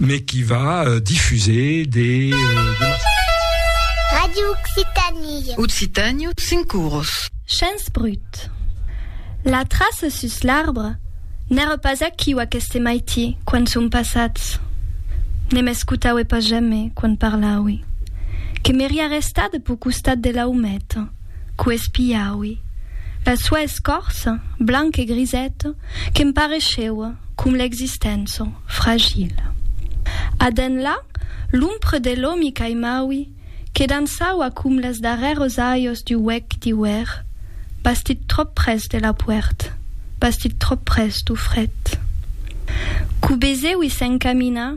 mais qui va euh, diffuser des... Euh, des... Radio Occitanie. Occitanie, Sincuros. Chance brut. La trace sus l'arbre n'era pas aquiu aqueste maiti quan son passats. Ne m'escoutaue pas jamais quan parlaue. Que m'eria restat pau costat de la ometa. Qu' espiaui la sua escòrça blanc e grisèt que'm pareisheua com l'existença fragil. A d'enlà, l'ompre de l'omi qu'aimaui que dançaua com les darrères aios du huec d'iuèr, bastit trop pres de la puèrt, bastit trop pres du fret. Qu' beseui s'encaminar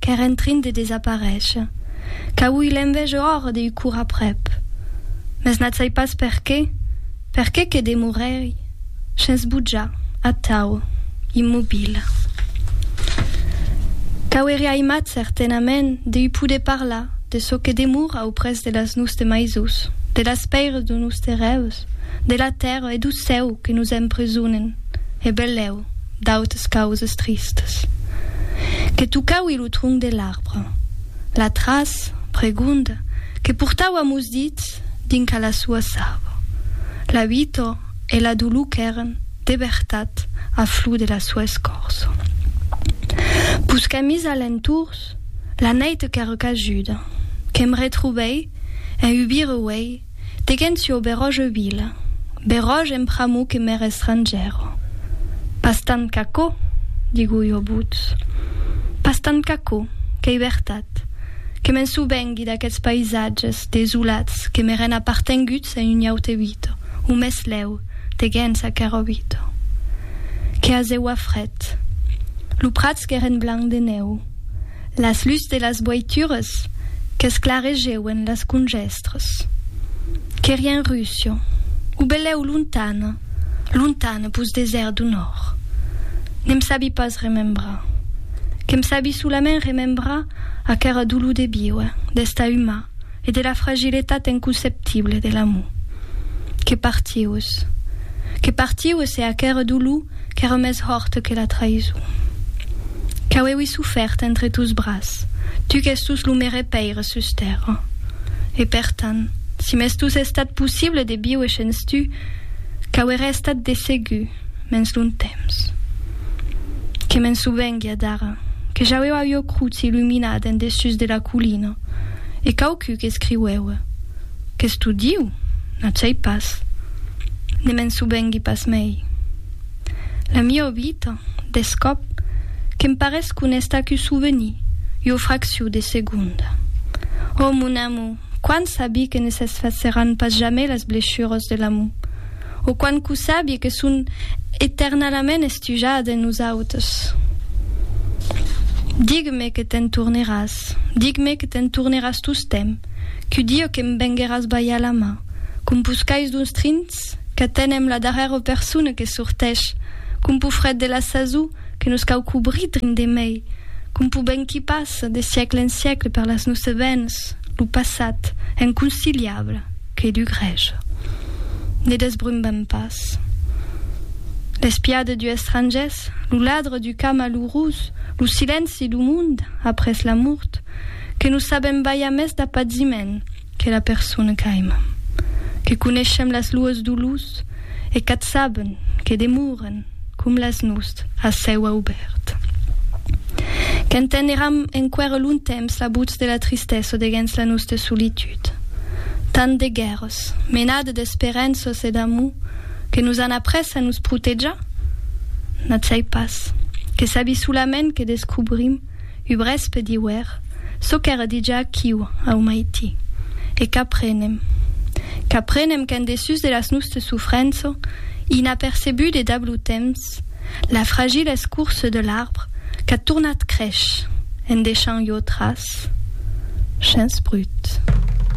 qu'ère en trin de desaparéisher, qu'auí l'envège òr deu cour aprèp. Mès n'ath sai pas per qué, per qué que demoréri shens bojar, atau, immobil. Qu'auéri aimat certenament deu poder parlar de çò que demora auprès de las nus de maisús, de las pèires de nus terrèus, de la tèrra e dou cèu que nous empresonen, e belèu, d'autes causes tristes, que tocaui lo tronc de l'arbre, l'atras pregonda que portau amos dits dinc a la soa sarva, la uitor e la dolor qu'èren de vertat a flor de la soa escorça. Pus qu'amis a l'entorns, la nèit qu'èra cajuda, que'm retrobèi en ubir uèi Tegencio Beròge Uil, Beròge en pr'amor que m'ère estrangièro. Pas tant qu'aquò, digo jo votz. Pas tant qu'aquò, qu'ei vertat, que me'n sò vengui d'aqueths païsatges desolats que m'èren apartenguts en un aute vita, o meslèu, tegens aquera vita. Que azeua fret. Lo prats qu'èren blanc de nèu. Las lus de las boitures qu'esclaregeuen las conjèstres. Qu'èri en Russia, o belèu lontana, lontana pus desèrt do nòrd. Ne'm sabi pas remembrar. Que'm sabi solament remembrar aquera dolor de víuer, d'estar umà, e de la fragiletat inconceptible de l'amor que partiós, que partiós e aquere dolor qu'ère mès hòrt que la traïson. Qu'auéui sofèrt entre tos bras, tu qu'ès tos lo mere Paire sus tèrra. E per tant, si m'estus estat possible de viuer shens tu, qu'auere estat de segur, mens d'un temps que me'n sovenguia d'ara, que j'aueu avieu crut s'illuminar d'en dessús de la collina, e quauqui qu'escriueue, qu'es tot Diu, n'atjai pas, ne me'n sovengui pas mei. La mia obita, d'escòp, que'm parés qu'o n'es tacu sovenir, ua fracciu de segonda. Ò, mon amor, quan sabi que ne s'esfaceran pas jamai las blechuras de l'amor, o quan cu sabie que son eternalament estujat en nosautes. Dig-me que te'n torneràs, dig-me que te'n torneràs tostemp, cu Dieu que'm vengueràs balhar la man, com pus cais d'uns trins qu'atenem la darrèra persona que sortèsh, com pus fret de la sasó, que nos cau cobrir drin de mei, com poben qui passa de siècle en siècle per las nosse vens lo passat inconciliable que du grèch. Ne desbrumbem pas. L'espia de du estrangès, lo ladre du cas malurós, lo silenci du monde après la mort, que nos sabem balhar mès d'a paziment, Que la persona qu'aima. Que coneishem las luas dolors e qu'ath saben que demoren com las nus ath cèu aubèrt. Qu'enteneram enqüèra lontemps la votz de la tristessa deguens la nosta solitud. Tant de guèrras, menada d'esperenças e d'amor que nos an après a nos protejar? N'ath sai pas. Que sabi solament que descobrim. ubrés pe diuer çò qu'èra dijà quiu au maiti, e qu'aprenem. Qu'aprenem qu'en dessús de las nustes sufrenço, inapercebut de dab lo temps, la fragila escorça de l'arbre qu'a tornat crésh, en deishant ieu tras. Chens brut.